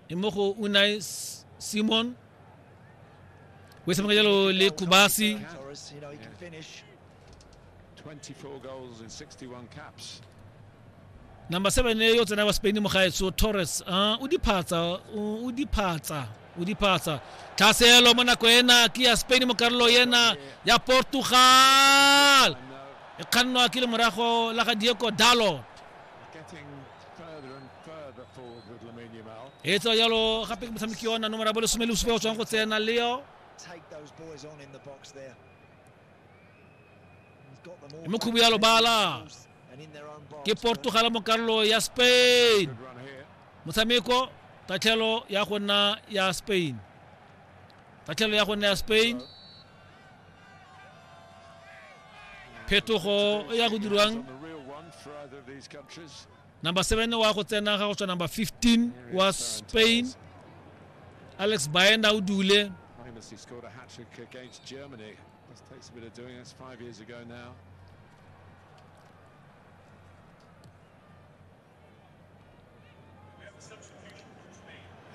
e mo go unai simon o tshameka jalo le kubasi number seven yo tsena wa spain mogaetso torres uh, o diphatsa o diphatsa o diphatsa tlhaselo mo nako ena ke ya spain mo karolo ena ya portugal e kgannwa ke le morago la ga diego dalot e tswa jalo gape ke motshameki ona nomora bo lesome le bosupa go tswang go tsena leo mme khubu ya lobala ke portugal mo karolo ya spain motshameko tatlhelo ya go nna ya spain tatlhelo ya go nna ya spain phetogo e ya go dirwang number 7 wa go tsena ga go tswa number 15 wa spain alex baena o dule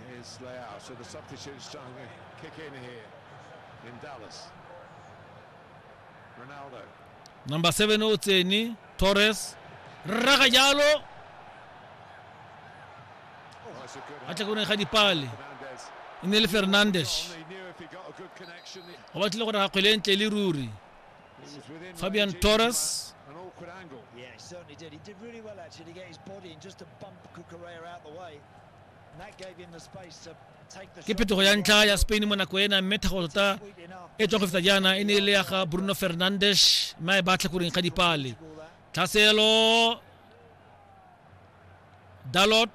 Here's Leao, so the substitute's starting to kick in here in Dallas. Ronaldo. Number 7 o tsene Torres rraga jalo a tla kone ga dipale e ne le Fernandes go batlile gore ga kgwele ntle le ruri Fabian Torres ke phetogo ya ntlha ya spain mo nako ena mme thago tota e tswa go feta jaana e ne e le ya ga bruno fernandes mme a e batla koreng ga dipale tlhaselo dalot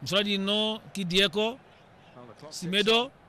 mosola dino ke diego semedo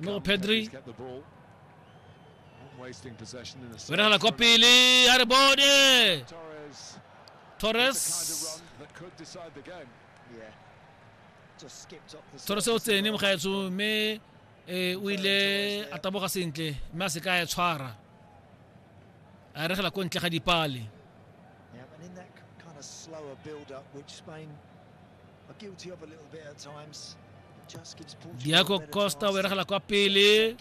Another Pedri. Wena la kwa pele a re bone Torres Torres o tsene mogaetso mme eh, o ile a taboga sentle mme a se ka ya tshwara a regela ko ntle ga dipale Yeah, and in that k- kind of slower build-up, which Spain diago costa o beregela kwa pele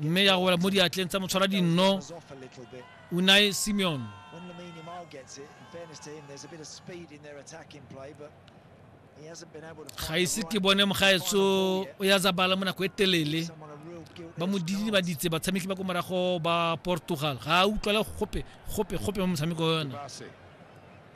mme ya go wela mo diatleng tsa motshwara dinno unai simeon ga ise ke bone mogaetso o ya zabala mo nako e telele ba mo didibaditse batshameki ba ko morago ba portugal ga a utlwale gope gope gope mo motshameko yona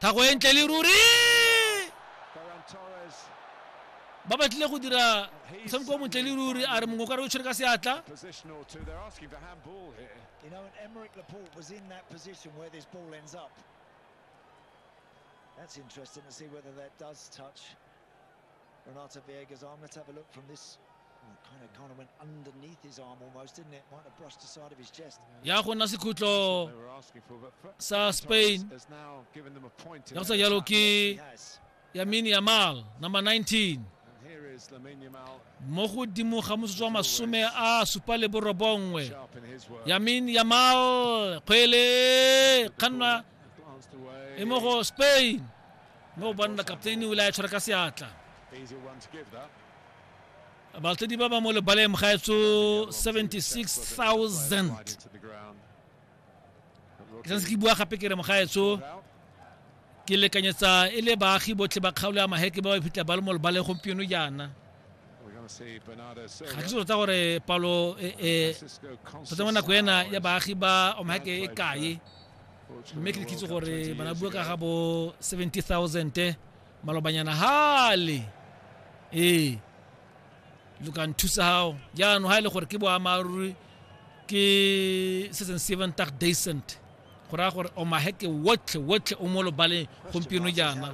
thago e ntle le ruri ba batlile go dira motshameko o montle le ruri a re mongwe ka re o tshwere ka seatla That's interesting to see whether that does touch Renato Viega's arm. Let's have a look from this ya go nna sekhutlo sa spain ya go sa jalo ke yamini yamal number 19 mo godimo ga motsotso wa masome a supa le borobongwe yamin yamal kgwele kganna e mo go spain mo o banna kapteini o ile a e tshwara ka seatla Batlodi ba ba mo lebaleng gaetso 76,000. Ke santse ke bua gape ke re mogaetso ke lekanyetsa e le baagi botlhe ba kgaolo ya maheke ba ba iphitlha ba le mo lebaleng gompieno jaana ga ke tota gore palo e, e, tota mo nako ena ya baagi ba omaheke e kae mme ke lekitse gore bana bua ka ga bo 70,000 malobanyana hale ee lo ka nthusa gago jaanong ga e le gore ke boammaaruri ke se seng seven tag decent go raya gore omaheke wotlhe wotlhe o mo lobaleng gompieno jaana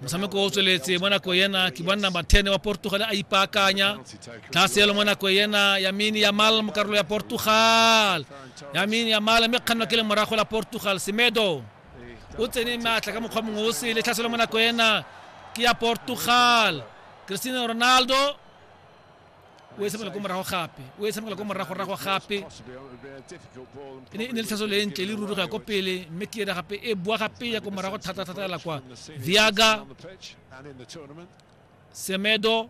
motshameko o tsweletse mo nako yena ke bonna mathene wa portugal a ipaakanya tlhaselo mo nako yena yamini yamal mo karolo ya portugal yamini yamal mme kganwa ke le morago la portugal semedo o tsene maatla ka mokgwa mongwe o sele tlhaselo mo nako ena ke ya portugal cristiano ronaldo o e tshamekela ko morago gape o e tshamekela ko moragorago gape e ne e le tlhaso le ntle le ruri go ya ko pele mme ke ena gape e boa gape ya ko morago thata-thata ela kwa viaga semedo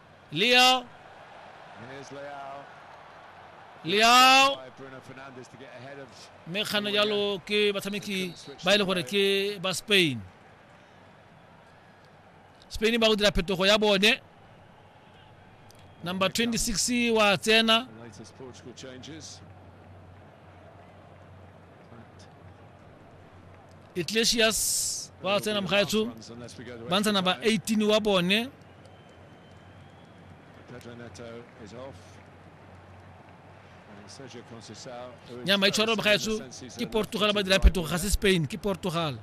Leo. Leo. mme kgano jalo ke batshameki ba e le gore ke ba spain spain ba go dira phetogo ya bone number 26 wa tsena iglesias wa tsena mogaetsho ba ntsa number 18 wa bone nya maitshwaro ga etso ke portugal ba dira phetogo ga se spain ke portugal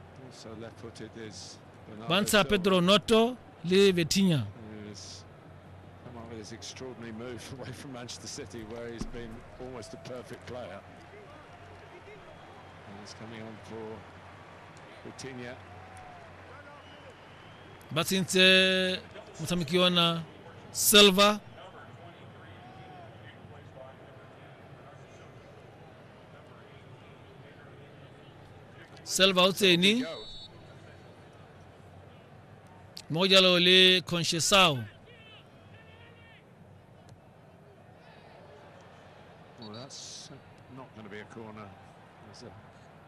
ba ntsha pedro noto le vetinya this extraordinary move away from Manchester City, where he's been almost a perfect player. And he's coming on for Vitinha. ba tshentse motshameki yona silver silver o tsene mo go jalo le conchesao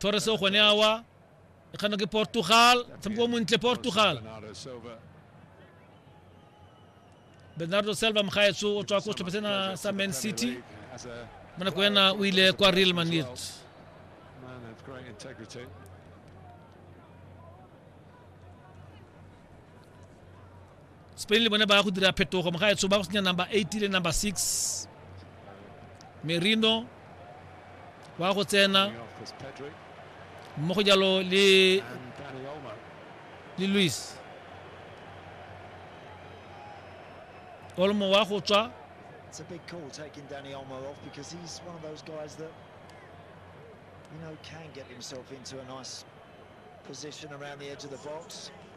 torres o kgone awa e kgano ke portugal tshameko o montle portugal bernardo selva mokgaetso o tswa ko setlhopha sena sa man city mo nako ena o ile kwa real madrid Spain le bone ba ya go dira phetogo mogaetsho ba go senya number 8 le number 6 merino wa go tsena mmogo jalo le le louis olmo wa go tswa It's a big call taking Danny Olmo off because he's one of those guys that, you know, can get himself into a nice position around the edge of the box.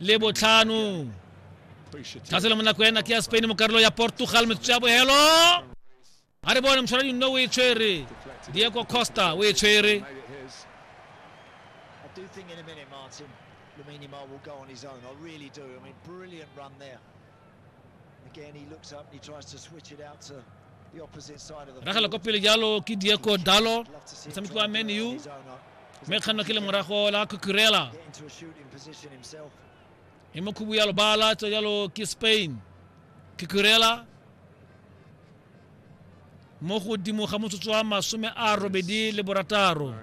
le botlhano tlhase le mo nako ena ke ya spain mo karolo ya portugal metsotso ya bohelo a re bone motshwara dinno o e tshwere diego costa o e tshwere I do think in a minute, Martin, Lamine Yamal will go on his own. I really do. I mean, brilliant run there. ragela kwa pele jalo ke diego dalo motshameki wa man u mme kganno ke lemorago la kukurela e mokhubu ya lobala tso jalo ke spain kukurela mo godimo ga motsotso wa masome a robedi le borataro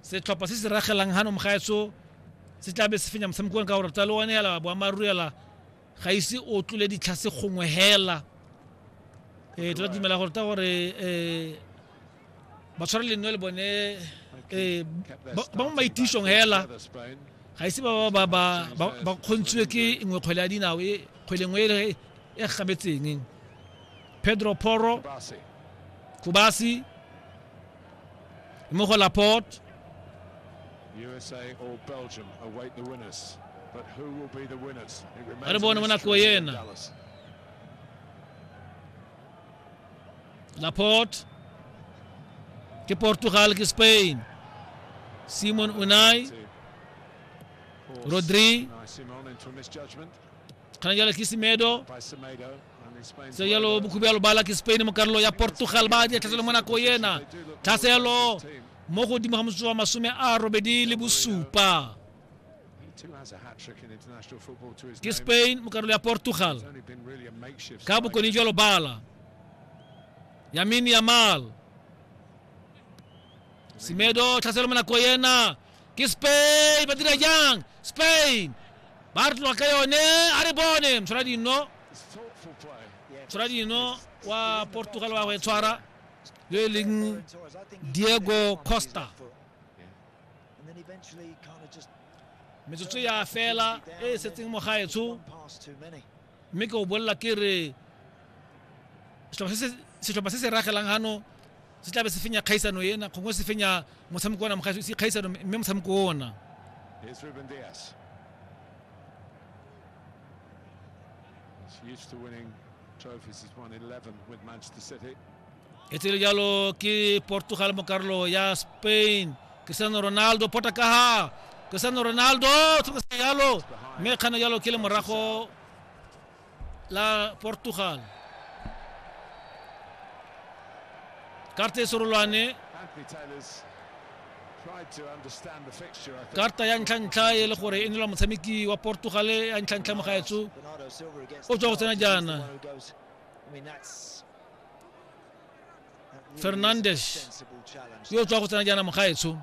setlhopha se se ragelang gano mogaetso se tla be se fenya motshamekong ka gore talo one yala boammaaruri yala ga ise o tlole ditlhase gongwe hela um tla dumela gore ta gore um ba tshwara lenno le bone eh, ba mo maitišong hela ga ise ba ba ba ba kgontswe ke nngwe kgwele ya dinao e kgwele nngwe e, e gabetseng pedro poro kubasi mo go laporte USA or Belgium await the winners. But who will be the winners? It remains a mystery in Dallas. Laporte ke Portugal ke Spain Simon Unai Rodri kana jala ke Semedo se yalo bukubelo bala ke Spain mo karolo ya Portugal ba di tlhatselo mona ko yena tlhaselo mo godimo ga motsotswa masome a robedi le bosupa kispain mu karolo ya portugal ka bokoni jwa lobala yamin yamal semedo tlhaselo mo nako yena ke spain ba dira jang spain ba re tloga ka yone a re bone mtshwara dino mtshwara dino wa portugal wa go e tshwara yo e leng diego costa metsotso ya fela e e setseng mo gaetsho mme ke o bolela ke re setlhopha se se ragelang gano se tlabe se fenya kgaisano ena gongwe se fenya motshameko ona mogaetso se kgaisano mme motshameko ona Here's Ruben Diaz. He's used to winning trophies. He's won 11 with Manchester City. e tsere jalo ke portugal mokarlo ya spain cristiano ronaldo pota kaha cristiano ronaldo tshokasa jalo mme kgana jalo ke le morago la portugal karta e serolwane karta ya ntlha-ntlha e le gore e nela motshameki wa portugal ya ntlha-ntlha mogaetso o tswa go tsena jaana fernandes yo o tswa go tsena jaana mogaetsho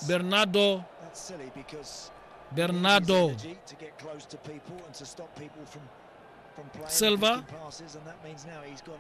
bernardo bernardo silva